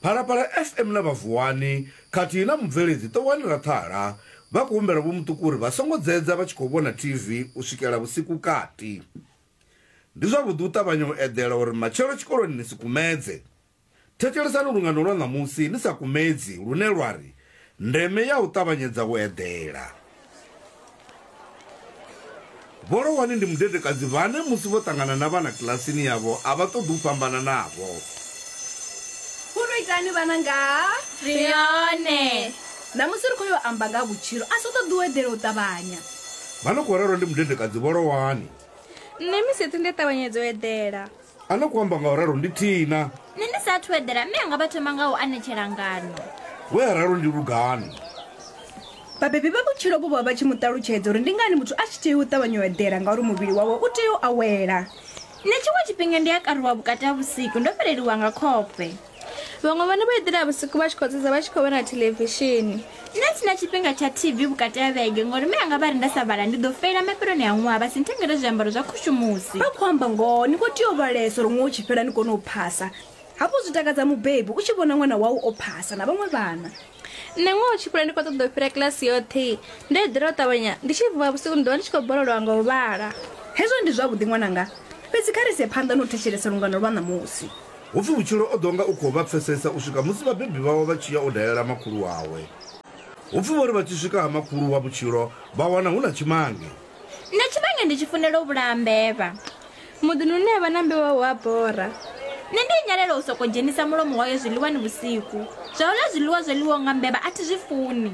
Phalaphala FM na vha Vuwani khathihi na mubveledzi Ṱowani Raṱhala vha khou humbela Vho Muṱuku uri vha songo dzedza vha tshi khou vhona TV u swikela vhusiku kati. Ndi zwavhuḓi u ṱavhanya u eḓela uri matshelo tshikoloni ni si kumedze. Thetshelesani lungano lwa ṋamusi ni sa kumedzi lune lwa ri, Ndeme ya u ṱavhanyedza u eḓela. Vho Lohwani ndi mudedekadzi vhane musi vho ṱangana na vhana kilasini yavho a vha ṱoḓi u fhambana navho. Fhulu itani vhananga. Ri hone. Ṋamusi ri khou yo amba nga ha vhutshilo, a si u ṱoḓi u eḓela u ṱavhanya. Vha no khou rerwa ndi mudedekadzi Vho Lohwani. Nṋe misi yoṱhe ndi a ṱavhanyedza u eḓela. a no khou amba nga u ralo ndi thina nṋe ndi sa athu eḓela mme anga vha thoma nga u anetshela ngano we a ralo ndi lugano vhabebi vha vhutshilo vho vha vha tshi mu ṱalutshedza uri ndi ngani muthu a tshi tea u ṱavhanya u eḓela ngauri muvhili wawe u tea u awela nṋe tshiṅwe tshifhinga ndi a karuwa vhukati ha vhusiku ndo fheleliwa nga khofhe vhaṅwe vhone vho eḓela vhusiku vha tshi khou dzedza vha tshi khou vhona thelevishini nṋe sina tshifhinga tsha tv vhukati ha vhege ngori me anga vha ri nda sa vhala ndi ḓo feila mafheloni a ṅwaha vha si nthengele zwiambaro zwa khushumusi vha khou amba ngoho ni khou tea u vhalesa uri ṅwaha u tshi fhela ni kone u phasa hafhu zwi takadza mubebi u tshi vhona ṅwana wau o phasa na vhaṅwe vhana nṋe ngoho tshikule ndi khou ṱoḓa u fhira kilasi yoṱhe ndo eḓela u ṱavhanya ndi tshi vuwa vhusiku ndi ḓovha ndi tshi khou bololowa nga u vhala hezwo ndi zwavhuḓi ṅwananga fhedzi kha ri ise phanḓa na u thetshelesa lungano lwa ṋamusi Hu pfi vhutshilo o ḓo nga u khou vha pfesesa u swika musi vhabebi vhawe vha tshi ya u dalela makhulu wawe. Hu pfi vho ri vha tshi swika ha makhulu wa vhutshilo vha wana hu na tshimange. Nṋe tshivhange ndi tshi funela u vhulaha mbevha. Muḓini une ha vha na mbevha hu a bora. Nṋe ndi nyalela u sokou dzhenisa mulomo wayo zwiḽiwani vhusiku. Zwa u ḽa zwiḽiwa zwo ḽiwaho nga mbevha a thi zwi funi.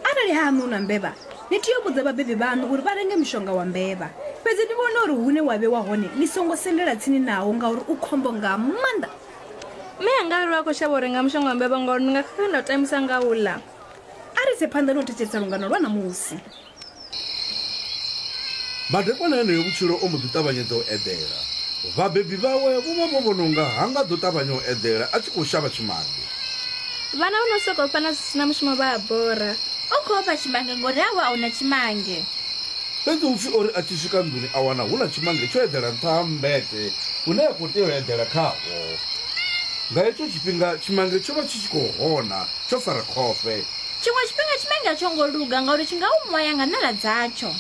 Arali ha haṋu hu na mbevha, ni tea u vhudza vhabebi vhaṋu uri vha renge mushonga wa mbevha. Fhedzi ni vhone uri hune wa vhewa hone ni songo sendela tsini nawo ngauri u khombo nga maanḓa. Mme anga a ri vha khou shavha u renga mushonga wa mbevha ngauri ndi nga khakha nda u tambisa nga u u ḽa. A ri ise phanḓa na u thetshelesa lungano lwa ṋamusi. Madekwana heneyo vhutshilo o mbo ḓi ṱavhanyedza u eḓela. Vhabebi vhawe vho vha vho vhona u nga ha nga ḓo ṱavhanya u eḓela a tshi khou shavha tshimange. Vhana vho no sokou fana zwi si na mushumo vha a bora. U khou ofha tshimange ngori hawe a hu na tshimange. Fhedzi Hupfi o ri a tshi swika nḓuni a wana hu na tshimange tsho eḓela nṱha ha mmbete une a khou tea u eḓela khawo. Nga hetsho tshifhinga tshimange tsho vha tshi tshi khou hona tsho fara khofhe. tshiṅwe tshifhinga tshimange a tsho ngo luga ngauri tshi nga u ṅwaya nga ṋala dzatsho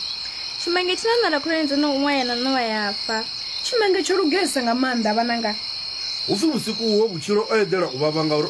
tshimange tshi na ṋala khulwane dzo no u ṅwaya na ṋowa ya fa tshimange tsho lugesa nga maanḓa vhananga hu pfi vhusiku huwo vhutshilo o eḓela u vhavha ngauri